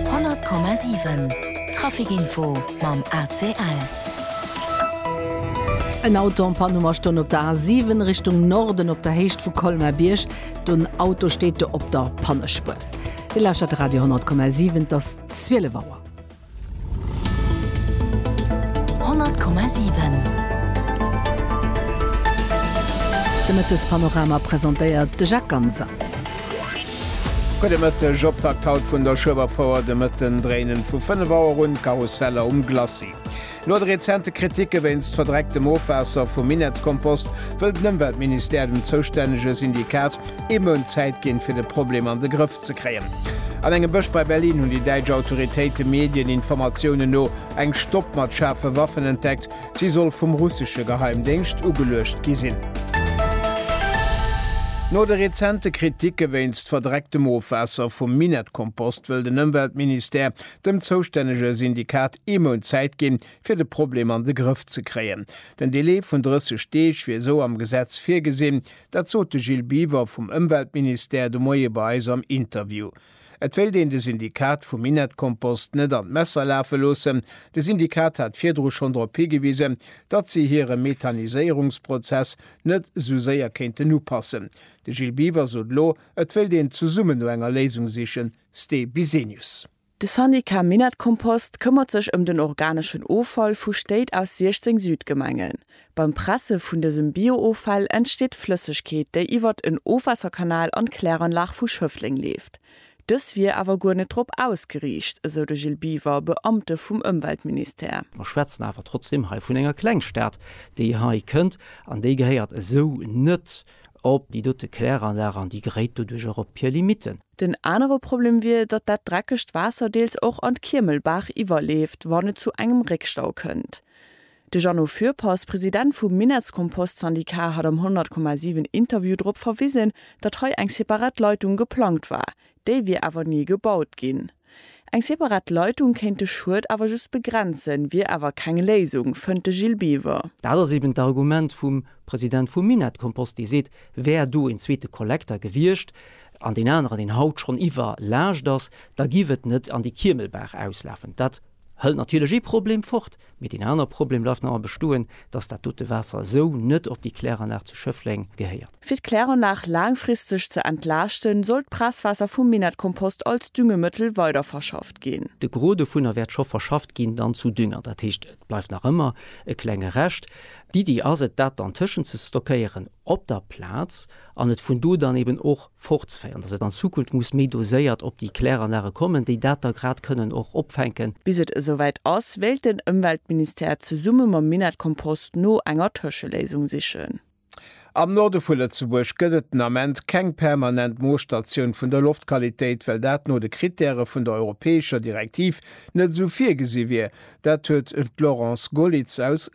100,7 Trafic Info mam ACL. En Auto en Panne um a Stonn op der A7 Richtung Norden op der Héicht vu Colmar-Bierg. Den Auto steet do op der Pannespuer. Dir lauschert Radio 10,7, et ass 12 Auer. 100,7 De Mëttespanorama presentéiert de Jacques Ganser. Gudde Mëtteg, Optakt haut vun der Schueberfouer de Mëtten, dréinen vu 5 Auer un d'Karusseller um Glacis. No de rezente Kriticke wéinst verdrecktem Ofwaasser vum Minettkompost, wëll den Ëmweltministère dem zoustännege Syndikat ee Mount Zäit ginn, fir de Problem an de Grëff ze kréien. An engem Bësch bei Berlin hunn déi däitsch Autoritéite Medieninformatiounen no eng Stopp mat schaarfe Waffen entdeckt. Si soll vum russesche Geheimdéngscht ugeluecht gi sinn. No de rezente Kriticke wéinst verdrecktem Ofwaasser vum Minettkompost, wëll den Ëmweltministère dem zoustännege Syndikat ee Mount Zäit ginn, fir de Problem an de Grëff ze kréien. Den Delai vun 30 Deeg wier esou am Gesetz virgesinn. Dat sot de Gilles Biver vum Ëmweltministère de Moie bei eis am Interview. Et wéilt een de Syndikat vum Minettkompost net an d'Messer lafe loossen. De Syndikat hat virdru schonn drop higewisen, datt si hire Methaniséierungsprozess net esou séier kéinten upassen. De Gilles Biver sot elo, et wéilt een zesummen no enger Léisung sichen. Ste Bisenius. De Syndicat Minett Kompost këmmert sech ëm den organeschen Offall vu Stéit aus 16 Südgemengen. Beim Presse vun dësem Bio-Offall entsteet Flëssegkeet, déi iwwert en Ofwaasserkanal an d'Kläranlag vu Schëffleng leeft. Dës wier awer guer net drop ausgeriicht, esou de Gilles Biver, Beamte vum Ëmweltministère. Mer schwätzen awer trotzdeem hei vun enger Klengstad, déi hei kënnt, an déi gehéiert esou net. op déi dote Kläranlag an déi geréit doduerch och op hir Limitten. Den anere Problem wier, datt dat dreckegt Waasser deels och an d'Kiemelbaach iwwerleeft, wann et zu engem Réckstau kënnt. De Jeannot Fürpass, President vum Minettskompost-Syndicat hat am 100 Komma 7 Interview drop verwisen, datt hei eng separat Leitung geplangt war, déi wier awer ni gebaut ginn. Eng separat Leitung kéint de Schued awer just begrenzen, wier awer keng Léisung, fënnt de Gilles Biver. Dat ass eben d'Argument vum President vum Minett-Kompost, dee seet, wär do een zweete Kollekter gewiescht, an deen aneren, deen haut schonn iwwerlaascht ass, da giff et net an déi Kiemelbaach auslafen. Dat hëlt natierlech ee Problem fort, mee deen anere Problem bleift nach ëmmer bestoen, dass dat dote Waasser esou net op déi Kläranlag zu Schëffleng gehéiert. Fir d'Kläranlag laangfristeg ze entlaaschten, soll d'Presswaasser vum Minettkompost als Düngemëttel weiderverschafft ginn. De Gros dovunner wäert scho verschafft ginn dann zu Dünger. Dat heescht, et bleift nach ëmmer e klenge Rescht. D'Iddi ass et, dat dann tëschent ze stockéieren op der Plaz an et vun do dann eben och fortzeféieren, dass et an Zukunft muss méi doséiert op déi Kläranlage kommen, déi dat da grad kënnen och opfänken. Bis et esouwäit ass, wéilt den Ëmweltministère zesumme mam Minettkompost no enger Tëscheléisung sichen. Am Norde vu Lëtzebuerg gëtt et den Ament keng permanent Moosstatioun vun der Loftqualitéit, well dat no de Krittäre vun der europäescher Direktiv net esou virgesi wier. Dat huet d'Laurence Gollitz aus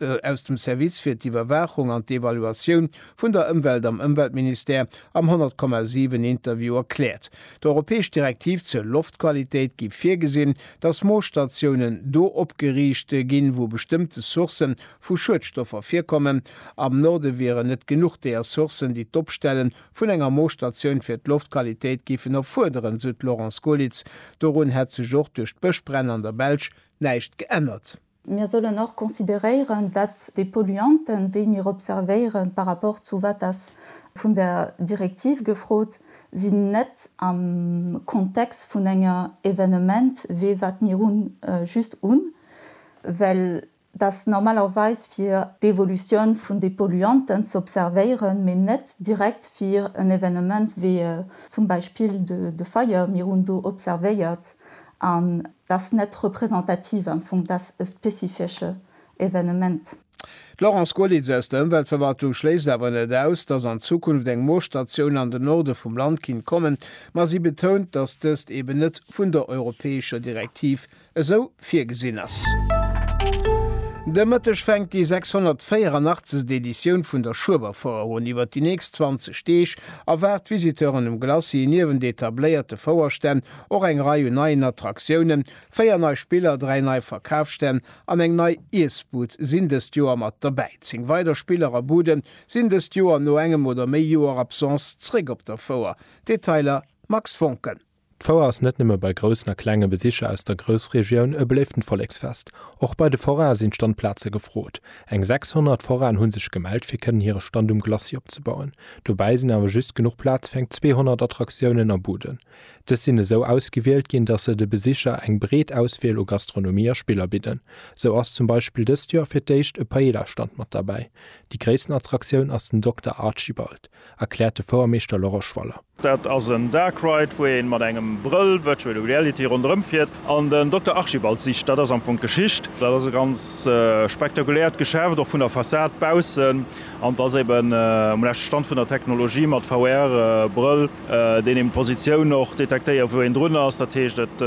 dem Service fir d'Iwwerwaachung an d'Evaluatioun vun der Ëmwelt am Ëmweltministère am 100, 7 Interview erkläert. D'europäesch Direktiv zur Loftqualitéit gi virgesinn, datt Moosstatiounen do opgeriicht ginn, wou bestëmmte Sourcë vu Schuedstoffer virkommen, Am Norde wieren net genuch déi Ressourcen, déi d'Opstelle vun enger Moosstatioun fir d'Loftqualitéit géifen erfuerderen, sou d'Laurence Goelitz. Dorun hätt sech och duerch d'Bëschbränn an der Belsch näischt geännert. Mir sollen och consideréieren, datt déi Polluanten, déi mir observéieren, par rapport zu wat ass vun der Direktiv gefrot, sinn net am Kontext vun enger Evenement wéi wat mir hunn, just un, well, dass normalerweis fir d'Evolution vun de Polluanten ze observéieren, mee net direkt fir en Evenement wéi zum Beispill de Feier, mir hunn do observéiert, an dass net représentativ am Fong, dass e spezifesche Evenement. D'Laurence Goerlitz aus der Ëmweltverwaltung schléisst awer net aus, dass an Zukunft eng Moosstatioun an de Norde vum Land kinnt kommen, ma si betount, dass dëst eben net vun der europäescher Direktiv esou virgesinn ass. De Mëtteg fänkt déi 684. Editioun vun der Schueberfouer un. Iwwer déi nächst 20 Deeg erwaart d'Visiteuren um Glacis niewent etabléierte Fouerstänn och eng Rei un neien Attraktiounen. Véier nei Spiller, dräi nei Verkafsstänn an eng nei Iessbud sinn dëst Joer mat dobäi. Zéng weider Spiller a Bude sinn dëst Joer no engem oder méi Joer Absence zréck op der Fouer. Detailer Max Voncken. D'Fouer ass net nëmme bei groussen a klenge Besicher aus der Groussregioun e beléiften Volleksfest. Och bei de Foraine sinn Standplaze gefrot. Eng 600 Foraine hunn sech gemellt fir kënnen hire Stand um Glacis opzebauen. Dobäi sinn awer just genuch Plaz fir eng 200 Attraktiounen a Buden. Dës sinn esou ausgewielt ginn, dass se de Besicher eng breet Auswiel u Gastronomie a Spiller bidden. Sou ass zum Beispill dëst Joer fir d'éischt e Paella-Stand mat derbäi. Déi gréissten Attraktioun ass den Dokter Archibald. erkläert de Fouermeeschter Laurent Schwaller. Dat ass en Dark Ride, wou ee mat engem Brëll, Virtual Reality, ronderëm fiert an den Dokter Archibald sicht. Dat ass am Fong d'Geschicht. Dat ass e ganz spektakuläert Geschäft, och vun der Fassad baussen. An et ass eben um leschte Stand vun der Technologie mat VR-Brëll, deen eben d'Positioun och detektéiert, wou een drun ass. Dat heescht, et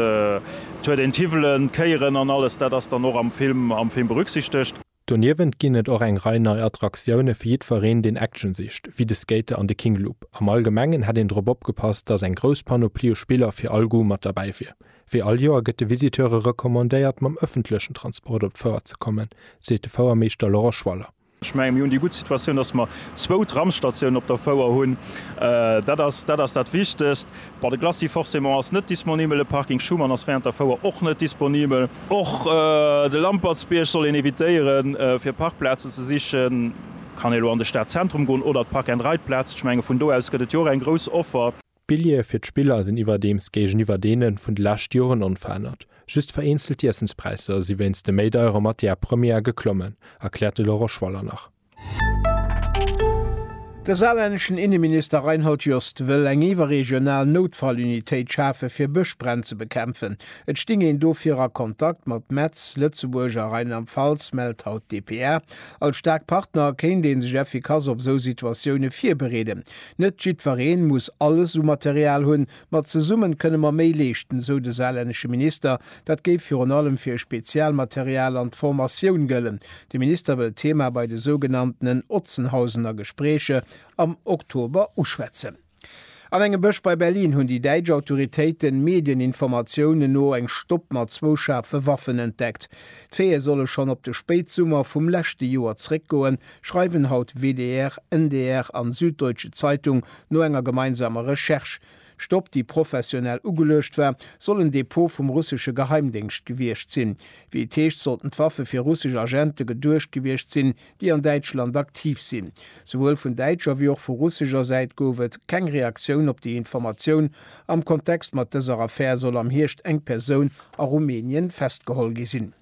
huet een d'Hiwwelen, d'Kéieren an alles. Dat ass dann och am Film berücksichtegt. Doniewent ginn et och eng Rei nei Attraktioune fir jiddwereen, deen Action sicht, wéi de Skater an de King Loop. Am Allgemengen hätt een drop opgepasst, datt eng grouss Panoplie u Spiller fir all Goût mat derbäi wier. Wéi all Joer gëtt de Visiteure recommandéiert, mam ëffentlechen Transport op d'Fouer ze kommen, seet de Fouermeeschter Laurent Schwaller. Ech mengen, mir hunn déi gutt Situatioun, datt mer zwou Tramsstatiounen op der Fouer hunn. Dat ass dat Wichtegst. Bon, de Glacis forcément ass net disponibel, de Parking Schuman ass während der Fouer och net disponibel. Och de Lampertsbierg soll een evitéieren, fir Parkplazen ze sichen. Kann ee elo an de Stadzentrum goen oder d'Park and Ride Plazen? Ech menge vun do aus gëtt et jo och eng grouss Offer. D'Billjeeë fir d'Spiller sinn iwwerdeems géigeniwwer deene vun de leschte Joren onverännert. Just vereenzelt Iessenspräisser si wéinst de méi deiere Matière première geklommen, erkläert de Laurent Schwaller nach. De saarlänneschen Inneminister Reinhold Jost wëll eng iwwerregional Noutfallunitéit schafe fir Bëschbränn ze bekämpfen. Et sting een dofir a Kontakt mat Metz, Lëtzebuerg a Rheinland-Pfalz, mellt haut dpa. Als staark Partner kéint ee sech effikass op esou Situatioune virbereeden. Net jiddweree muss alles u Material hunn, Ma zesummen kënne mer méi leeschten, esou de saarlännesche Minister. Dat géif virun allem fir Spezialmaterial an d'Formatioun gëllen. De Minister wëll d'Thema bei de sougenanntenen Otzenhausener Gespréicher am Oktober uschwätzen. An engem Bësch bei Berlin hunn déi däitsch Autoritéiten, Medieninformatiounen no, eng Stopp mat zwou schaarfe Waffen entdeckt. D'Feeë solle schonn op de Spéitsummer vum leschte Joer zeréckgoen, schreiwen haut WDR, NDR an Süddeutsche Zeitung no enger gemeinsamer Recherche. Stopp, déi professionell ugeluecht war, soll en Depot vum russesche Geheimdéngscht gewiescht sinn. Wéi et heescht, sollten d'Waffe fir russesch Agente geduecht gewiescht sinn, déi an Däitschland aktiv sinn. Souwuel vun däitscher wéi och vu russescher Säit gouf et keng Reaktioun op déi Informatioun. Am Kontext mat dëser Affär soll am Hierscht eng Persoun a Rumänien festgeholl gi sinn.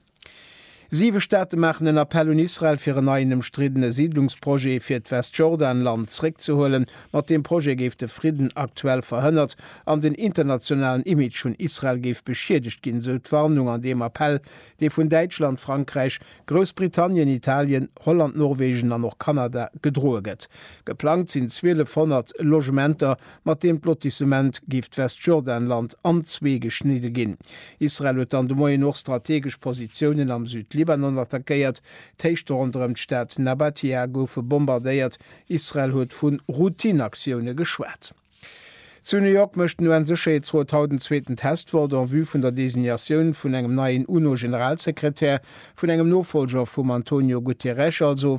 Siwe Staate maachen en Appell un Israel, fir en neien ëmstriddene Siidlungsprojet fir d'Westjordanland zréckzehuelen. Mat deem Projet géif de Fridden aktuell verhënnert an den internationalen Image vun Israel géif beschiedegt ginn, esou d'Warnung an deem Appell, dee vun Däitschland, Frankräich, Groussbritannien, Italien, Holland, Norwegen an och Kanada gedroe gëtt. Geplangt sinn 1200 Logementer mat deem d'Lotissement géif d'Westjordanland an zwee geschnidde ginn. Israel huet dann de Moien och strategesch Positiounen am Südlibanon attackéiert. D'Héichte ronderëm d'Stad Nabatea goufe bombardéiert. Israel huet vu Routine-Aktioune geschwat. Zu New York mécht den UN-Sécherheetsrot haut en zweeten Testvote en vue vun der Designatioun vun engem neien UNO-Generalsekretär, vun engem Nofolger vum Antonio Guterres, also